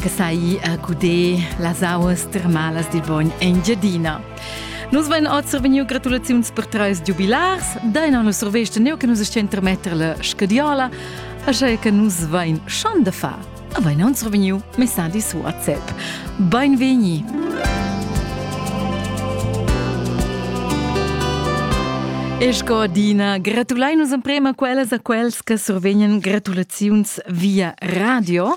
che sai a guder las auas termalas dil bogn Engiadina. Nus vein oz vegniu gratulaziuns per treis giubilars, deina nus survesta neu che nus sten tremetter la scadiola, așa che nus vein schon da far. A vein uns vegniu messadi su a ZEP. Beinvegni! Esco Dina, gratulai nus emprema quellas a quels che survegnan gratulaziuns via radio.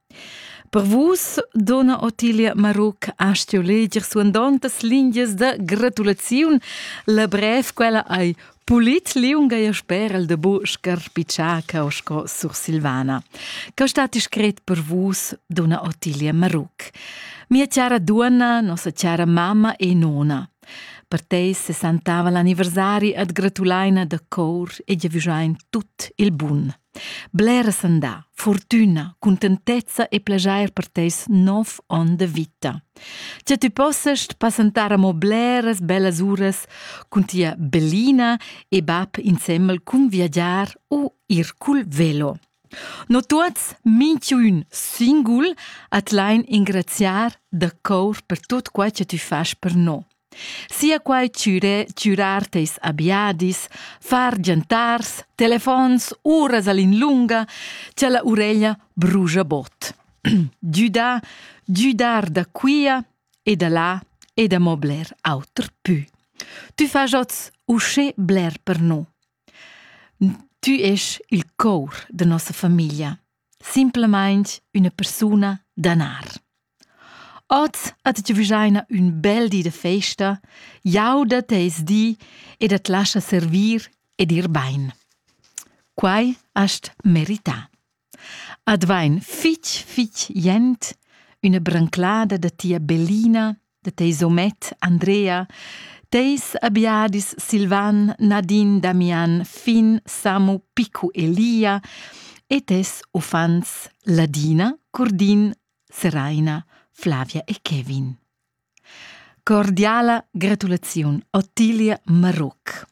Per vus, donna Ottilia Maruc, ha stuiu leger suandontas lingias da gratulaziun. La brev quella ei pulit liunga e sper el de bu scarpitschar cau sco sursilvana. Ca stat scret per vus, donna Ottilia Maruc. Mia cara duonna, nossa cara mamma e nona. Per te se santava l'anniversari ad gratulaina da cor e giavischein tut il bun. Bleras han dà fortüna, cuntentezza e plejair per teis nov on de vita. Che tü possast passentar amo bleras bellas uras cun tia bellina e bab insemmel cun viagiar u ir cul velo. No tuots, minchun singul, at lain ingraziar da cour per tot quai che tü fas per no. Sia quai chüre chürar teis abiadis, far giantars, telefons, uras all in lunga, cha la ureglia brugia bod. Düdà, düdar da quia e da là e da mo bler auter pü. Tü fas oz usché bler per no. Tü esch il cour da nossa famiglia. simplamaing üna persuna d'anar. Oz at giavüschaina ün bel di da festa, jauda teis di ed at lascha servir ed ir bain. Quai hast merità. Ad vain fich, fich jent üna branclada da tia bellina de teis homet Andrea, teis abiadis Silvan, Nadine, Damian, fin Samu, Picu e Lia, e tes uffants Ladina, Curdin, Seraina, Flavia e Kevin. Cordiala gratulaziun Ottilia Maruc.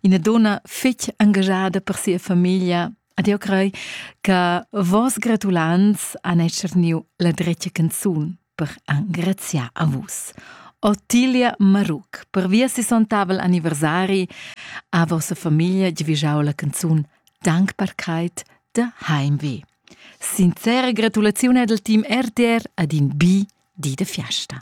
Ina dunna fetg engaschada per sia famiglia ed jeu crei che vos gratulants han etscharniu la dretga canzun per engraziar a vus. Ottilia Maruc per via sessontavel anniversari a vossa famiglia giavischau la canzun Dankbarkeit da Heimweh. Sincere gratulaziun ed al team RTR ad in bi di de fiasta.